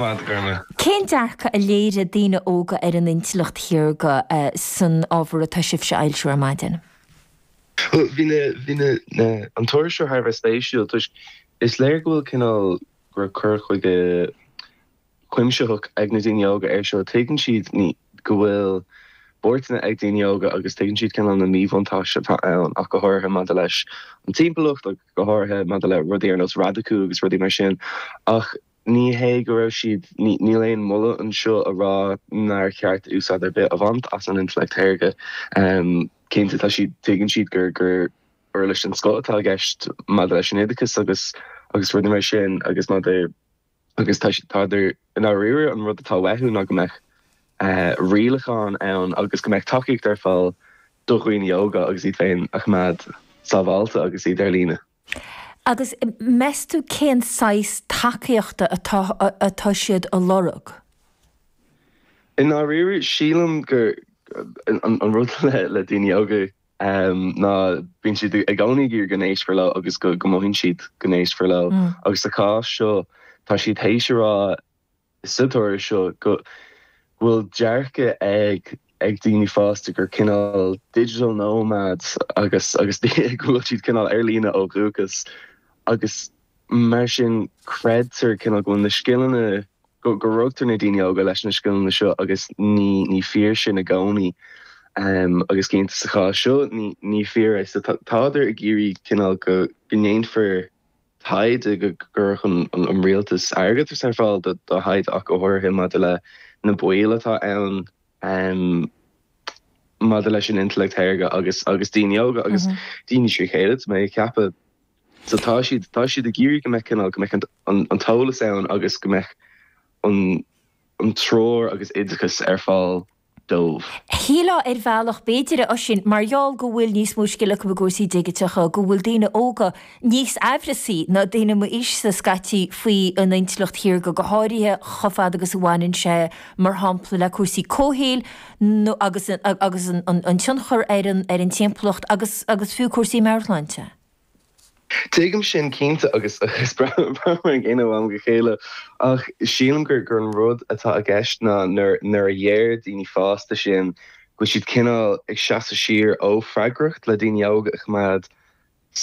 fad, ar na. Cén dearcadh a léirigh daoine óga ar an intleacht shaorga san ábhar atá sibhse a fhoilsiú ar maidin? Bhí na an tuairisc seo thar a bheith spéisiúil toisc is léir go bhfuil cineál go raibh cur chuige cuimsitheach ag na daoine óga air seo. Tuigeann siad go bhfuil buairteanna ag daoine óga agus tuigeann siad cineál na míbhuntáistí atá ann ach go háirithe maidir leis an timpeallacht ach go háirithe maidir le rudaí ar nós radacú agus rudaí mar sin ach Ní hé go raibh siad, níl aon mholadh anseo a rá nár cheart úsáid ar bith a bhaint as an intleacht shaorga. Cinnte, tá siad, tuigeann siad gur, gur uirlis den scoth atá i gceist maidir leis an oideachas agus, agus rudaí mar sin agus maidir, agus tá, tádar, i ndáiríre an rud atá uathu ná go mbeadh rialacháin ann agus go mbeadh tacaíocht ar fáil do dhaoine óga agus iad féin a choimeád sábháilte agus iad ar líne. Agus meas tú cén saghas tacaíochta atá siad a lorg? I ndáiríre, sílim gur an rud le daoine óga ná bíonn siad i gcónaí ag iarraidh go n-éistfear leo agus go mothaíonn siad go n-éistfear leo. Agus sa chás seo, tá siad théis a rá sa toradh seo go bhfuil dearcadh ag daoine fásta gur cineál digital nomads agus go bhfuil siad cineál ar líne ó dhúchas agus mar sin creidtear cineál go bhfuil na scileanna, go rugtar na daoine óga leis na scileanna seo agus ní fíor sin i gcónaí agus cinnte sa chás seo ní fíor é so tádar ag iarraidh cineál go ndéanfar taighde go gcuirfeadh an Rialtas airgeadas ar fáil do thaighde ach go háirithe maidir le na baoil atá ann maidir leis an intleacht shaorga agus agus daoine óga agus daoine trí chéile tá mé ag ceapadh. So tá siad tá siad ag iarraidh go mbeadh cineál go mbeadh an t-eolas ann agus go mbeadh an treoir agus oideachas ar fáil dóibh. Shílfeá ar bhealach, b'fhéidir, a Oisín, mar gheall go bhfuil níos mó scil acu i gcúrsaí digiteacha, go bhfuil daoine óga níos aimhreasaí ná daoine m'aois-sa scaití faoin intleacht shaorga, go háirithe chomh fada agus a bhaineann sé, mar shampla, le cúrsaí comhshaoil agus agus an tionchar ar an timpeallacht agus agus fiú cúrsaí meabhairshláinte. Tuigim sin cinnte agus braithim a gcéanna ó am go chéile ach sílim gur an rud atá i gceist ná nuair a dheir daoine fásta sin go bhfuil siad cineál ag seasamh siar ó freagracht le daoine óga a choimeád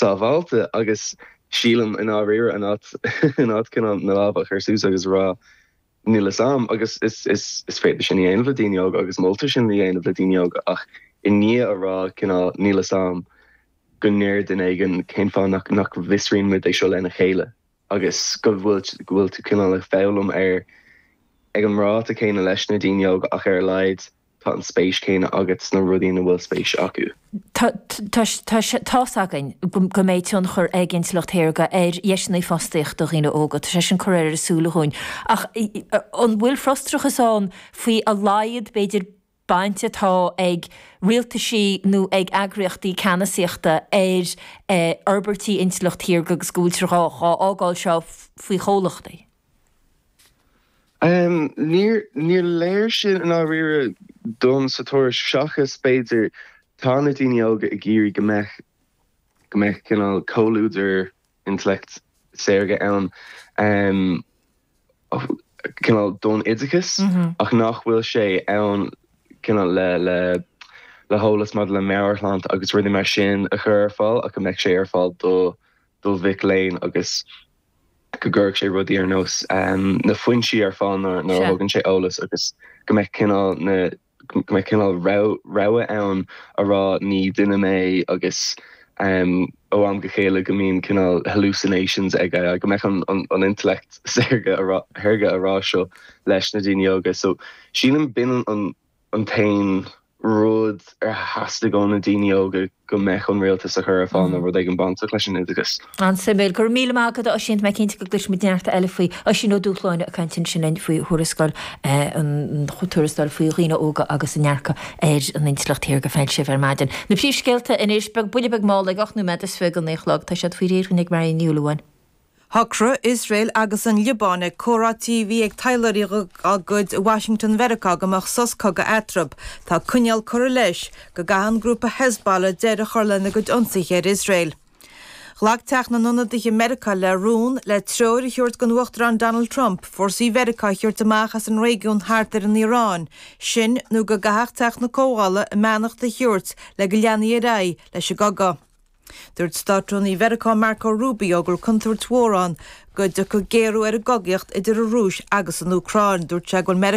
sábháilte agus sílim i ndáiríre in áit cineál na lámha a chur suas agus a rá Níl fhios a'm agus is is féidir sin a dhéanamh le daoine óga agus moltar sin a dhéanamh le daoine óga ach i ndiaidh a rá cineál níl fhios a'm go ndeir duine éigin cén fáth nach nach bhfiosraíonn muid é seo lena chéile agus go bhfuil go bhfuil tú cineál ag foghlaim ar ag an ráta céanna leis na daoine óga ach ar a laghad Tá an spéis céanna agat sna rudaí ina bhfuil spéis acu. Tá sé tá's againn go mbeidh tionchar ag Intleacht Shaorga ar dheiseanna fostaíochta do dhaoine óga, tá sé sin curtha ar ár súile dhúinn. Ach an bhfuil frustrachas ann faoi a laghad, b'fhéidir, baint atá ag rialtaisí nó ag eagraíochtaí ceannasaíochta ar fhorbairtí Intleacht Shaorga agus go bhfuiltear dhá fhágáil seo faoi chomhlachtaí? Níor léir sin i ndáiríre dom sa tuairisc seachas, b'fhéidir, tá na daoine óga ag iarraidh go mbeadh go mbeadh cineál comhluadar intleacht saorga ann, cineál don oideachas ach nach bhfuil sé ann cineál le le le heolas maidir le meabhairshláinte agus rudaí mar sin a chur ar fáil ach go mbeadh sé ar fáil do do mhic léinn agus go gcuirfeadh sé rudaí ar nós na foinsí ar fáil nuair a thugann sé eolas agus go mbeadh cineál na go mbeadh cineál rogha ann a rá ní duine mé agus ó am go chéile go mbíonn cineál hallucinations aige go mbeadh an intellect saorga saorga a rá seo leis na daoine óga so sílim bíonn an an t-aon rud ar theastaigh ó na daoine óga go mbeadh an rialtas a chur ar fáil ná rud éigin bainteach leis an oideachas. An-suimiúil. Go raibh míle maith agat a Oisín, tá mé cinnte go gcloisfimid neart eile faoi. Oisín Ó Dúshláine ag caint ansin linn faoi thuarascáil an tuarascáil faoi dhaoine óga agus a ndearcadh ar an intleacht shaorga a foilsíodh ar maidin. Na príomhscéalta anois, buille beag mall ag ocht nóiméad is fiche go naoi a chlog, tá siad faoi réir dhúinn ag Marie Ní Fhallúin. Shocraigh Iosrael agus an Liobáin ag comhráití a bhí ag taidhleoirí dá gcuid i Washington Mheiriceá go mbeadh sos cogaidh eatarthu. Tá coinníoll curtha leis go gcaithfidh an grúpa Hezbollah deireadh a chur lena gcuid ionsaithe ar Iosrael. Ghlac Teach na nIonadaithe i Meiriceá le rún le treoir a thabhairt don Uachtarán Donald Trump fórsaí Mheiriceá a thabhairt amach as an réigiún thart ar an Iaráin, sin nó go gcaithfeadh Teach na Comhdhála a mbeannacht a thabhairt le go leanfaí ar aghaidh leis an gcogadh. Dúirt Státrúnaí Mheiriceá Marco Rubio go raibh contúirt mhór ann go dtiocfadh géarú ar an gcogaíocht idir an Rúis agus an Úcráin. Dúirt sé go bhfuil.